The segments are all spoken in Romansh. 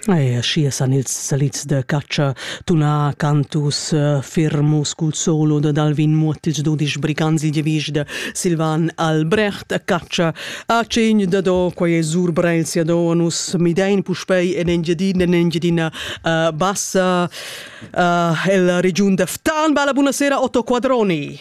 E aschia san ils salids da catscha tunar cantus eh, fermus cul solo dad Alvin Muottic dudisch brigantsi devisch da Silvan Albrecht a catscha a cegn da do quai è sur Breil sia do nus midein puspei en Engiadina en Engiadina uh, bassa uh, el region da Ftan bella buonasera Otto Quadroni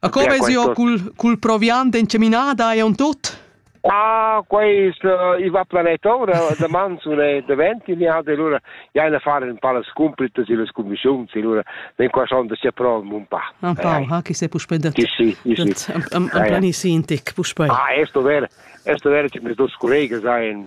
A co veis io cul, cul proviant encaminada e on tut? Ah, quais uh, i va planet ora, de mans una de venti ni hat allora ja eine fare un paar scumplites in le commissioni, allora den qua schon de se prom un pa. Un pa, ha chi se puspendet. Chi sì, chi sì. Am am planisintic, puspei. Ah, esto vere, esto vere che mes dos collegas ha in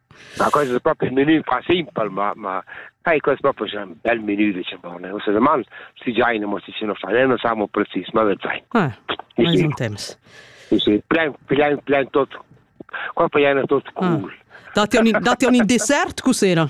Ma quest es propi ün menü qua simpel, ma ma sai quest propi es ün bel menü diciamo, ne? Usa daman si giain amo si sino fa, ne? Non siamo precis, ma vezzai. Ah, ma es un temps. Sì, sì, plein, plein, plein tot. Qua poi è tot cool. Ah. Date un, date un dessert cos'era?